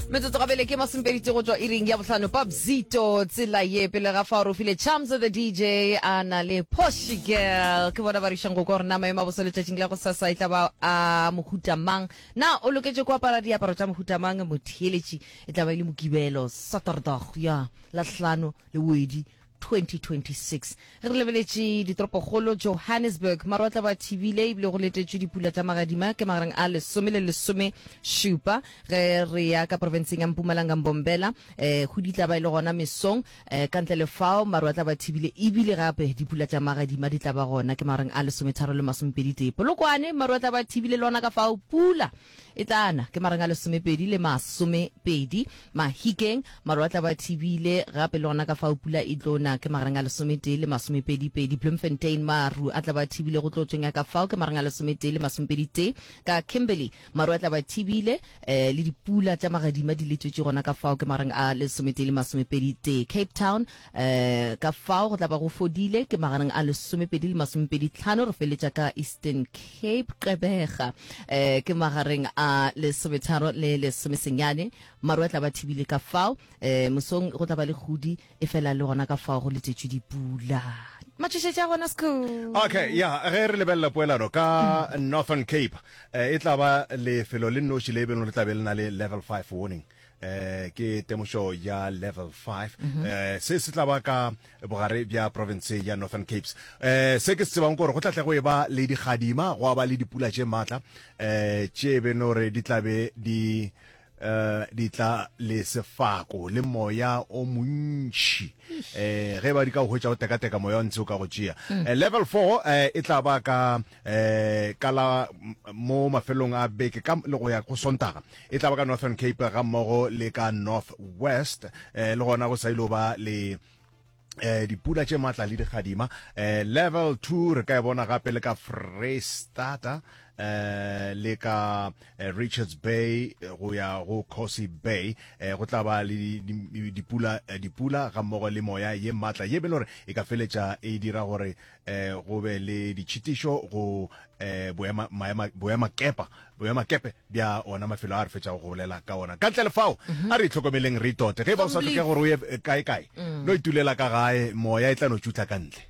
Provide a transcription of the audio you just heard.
metsotso gabele ke masomepeditse go tswa iring ya bohlano pap zito tsela ye pele ga fa o rofile charms the dj a na le poshi girl ke bona ba rišang go kwa gore na maemo a boso letšatšing la go sasa e tla ba a mohuta mang na o loketše go apara diaparo tša mohuta mang motheeletši e tla ba e le mokibelo saturdag ya lahlano le wedi 2026. Re lebeletše ditoropokgolo Johannesburg, maru a tla ba thibile ebile go letetšwe dipula tša magadima ke magareng a lesome le lesome šupa. Ge re ya ka profenseng ya Mpumalanga Mbombela, eh, go di tla ba e le gona mesong. Eh, ka ntle le fao maru a tla ba thibile ebile gape dipula tša magadima di tla ba gona ke magareng a lesometharo le masomepedi tee. Polokwane maru a tla ba thibile le ona ka fao pula. E tla na, ke marang a lesomepedi le masomepedi, Mahikeng, maru a tla ba thibile, gape le gona ka fao pula e tlo na, ke marang a lesometee le masomepedipedi, Bloemfontein, maru a tla ba thibile go tlotsweng ya ka fao, ke marang a lesometee le masomepeditee, ka Kimberley, maru a tla ba thibile, um le dipula tša magadima di letšwetše gona ka fao, ke marang a lesometee le masomepeditee, Cape Town, Ka fao go tla ba go fodile ke magareng a lesomepedi le masomepedi tlhano, re feletša ka Eastern Cape, Gqeberha, ke magareng a lesometharo le lesomesenyane. Maru a tla ba thibile ka fao. Mosong go tla ba le kgodi, efela le gona ka fao go letšetšwe dipula. Matšhošetši a gona, Sekhukhune. Okay, ya, ge re lebelela poelano ka Northern Cape, e tla ba lefelo le nnoši le e bego le tla be le na le Level Five Warning. eh ke temošo ya level 5 mhm. eh se se tla ba ka bogare bja province ya northern capes eh se ke se tsebang gore go tla tle go e ba le digadima go ba le dipula tše maatla eh tše be no re di tlabe di eh di tla le sefako le moya o montši eh ge ba di ka go hwetša go teka-teka moya o ntse o ka go tšea mm. eh, level 4 eh e tla ba ka eh ka la mo mafelong a beke ka le go ya go sontaga e tla ba ka northern cape ga mmogo le ka north west eh le gona go sa ile ba le eh dipula tše matla le digadima eh level 2 re ka e bona gape le ka Freestata eh le ka eh, Richards Bay eh, go ya go Cosi Bay eh go tla ba le dipula eh, dipula ga mmogo le moya ye matla ye be lore e ka feletša e dira gore eh go be le ditšhitišo go eh boema maema boema kepa boema kepe bja ona mafelo a re fetšago go bolela ka ona ka ntle le fao mhm. a re itlhokomeleng re itote ge ba o sa tlhoke gore o ye kae kae no mm. itulela ka gae moya e tla no tšutla ka ntle